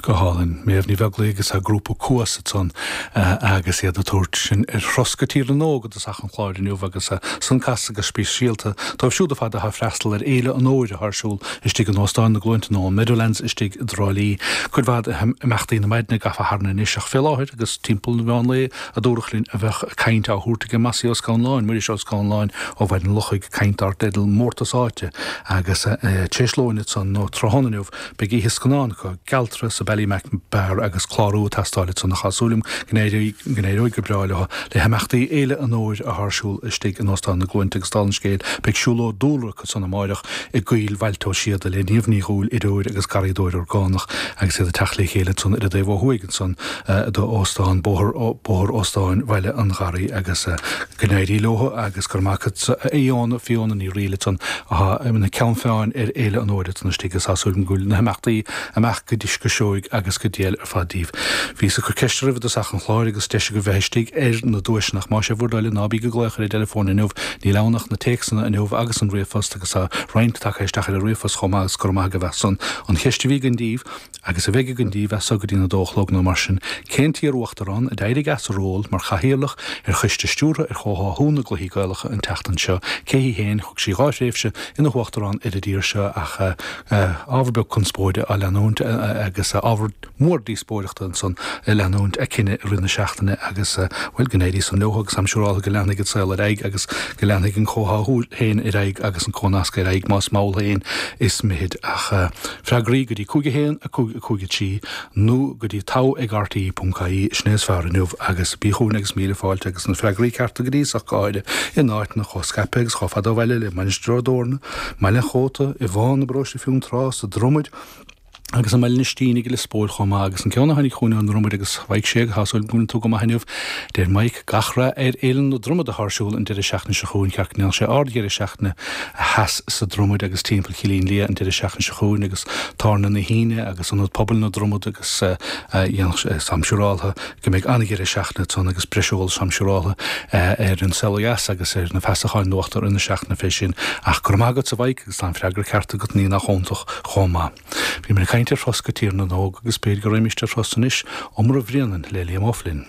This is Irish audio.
Go hálainn. Méabh Ní Bheaglaoich agus a grúpa Cuas ansan agus iad ag tabhairt sinn ar thuras go Tír na nÓg i dtosach an chláir inniu agus san casta go speisialta dóibh siúd ar fad atá ag freastal ar Fhéile an Fhómhair atá ar siúl istigh in Óstán na gCluainte nó an Meadowlands istigh i dTrá Lí. Cuid mhaith d'imeachtaí na maidne gafa tharainn anois ach fé láthair agus timpeall an mheán lae a dúradh linn a bheadh caint á thabhairt aige Mossie Ó Scanláin, Muiris Ó Scanláin ó Bhaile an Lochaigh, caint dar teideal 'Mórtas Áite', agus tar éis lóin ansan nó tráthnóna inniu beidh oíche scannán acu, 'Gealtra' sa Ballymac Bar agus clárú ag teastáil ansan ach tá súil agam go n-éireoidh go breá leotha le himeachtaí Fhéile an Fhómhair athá ar siúl istigh in Óstán na gCluainte agus dála an scéil beidh siúlóid dúlra acu ansan amáireach i gCoill Bhailte Ó Síoda le Niamh Ní Dhúill, feirmeoir agus garraíodóir orgánach, agus iad ag teacht le chéile ansan ar an dtaobh ó thuaidh ansan do Óstán Bóthar Bóthar Óstáin Bhaile an Gharraí agus go n-éirí leotha agus gura maith acu a Fhiona Fiona Ní Fhríl ansan athá ina ceann feadhna ar Fhéile an Fhómhair ansan istigh is tá súil agam go bhfuil na himeachtaí ag imeacht go dtí so go seoigh agus go diail ar fad díobh. Bhíos ag cur ceiste oraibh i dtosach an chláir agus deis agaibh bheith istigh ar na duaiseanna ach más é bhur dtoil é ná bíg ag glaoch ar an dteileafón inniu Níl ann ach na téacsanna inniu agus an ríomhphost agus tá roinnt tagtha isteach ar an ríomhphost chomh maith agus gura maith agaibh as san. An cheist a bhí againn daoibh, agus a bheidh againn daoibh as so go dtí'n a dó a chlog nó mar sin, cén t-iar-uachtarán a d'éirigh as a ról mar chathaoirleach ar choiste stiúrtha ar chomhtháthú na gcluichí Gaelacha an tseachtain seo? Cé hí féin? Thug sí dhá thréimhse ina huachtarán ar an dtír seo ach ábhar beag conspóide á leanúint agus ábhar mór díospóireachta ansan ag leanúint a cinneadh i rith na seachtaine agus, bhuel, go n-éirí san leotha agus táim siúráltha go leanfaidh an saol ar aghaidh agus go leanfaidh an comhtháthú féin ar aghaidh agus an comhnascadh ar aghaidh más mall féin is mithid ach freagraí go dtí 5 1 5 5 3 nó go dtí togha ag rte.ie sin é is fearr inniu agus bí chugainn agus míle fáilte agus na freagraí cearta go dtí so ach go háirithe in áiteanna chomh scaipthe agus chomh fada ó bhaile le Mainistir Ó dTorna, mBaile an Chóta, i bhFán, i bParóiste Fionntrá, sa Dromad, agus i mBaile an Ístínigh i Lios Póil chomh maith agus an ceann a tháinig chugainn ón nDromad agus bheidh sé ag súil go mbeidh tú go maith inniu, deir Mike, gach rath ar Fhéile na Dromad athá ar siúl an deireadh seachtaine seo chugainn ceart go leor déanfaidh sé ard-dheireadh seachtaine theas sa Dromad agus Teampall Chillín Liath an deireadh seachtaine seo chugainn agus Tábhairne na hUíne agus Ionad Pobail na Dromad agus déanfaidh sé táim siúráltha go mbeidh an-dheireadh seachtaine ann agus breis eolais táim siúráltha ar An Saol Ó Dheas agus ar na feasacháin in imeacht na seachtaine fé sin. Ach gura maith agatsa a Mhike! Tá an freagra ceart agat, ní nach iontach chomh maith. Bhíomar ag caint ar thuras go Tír na nÓg agus b'fhéidir go raghaimíst ar thuras anois, Iomramh Bhréanainn le Liam O'Flynn.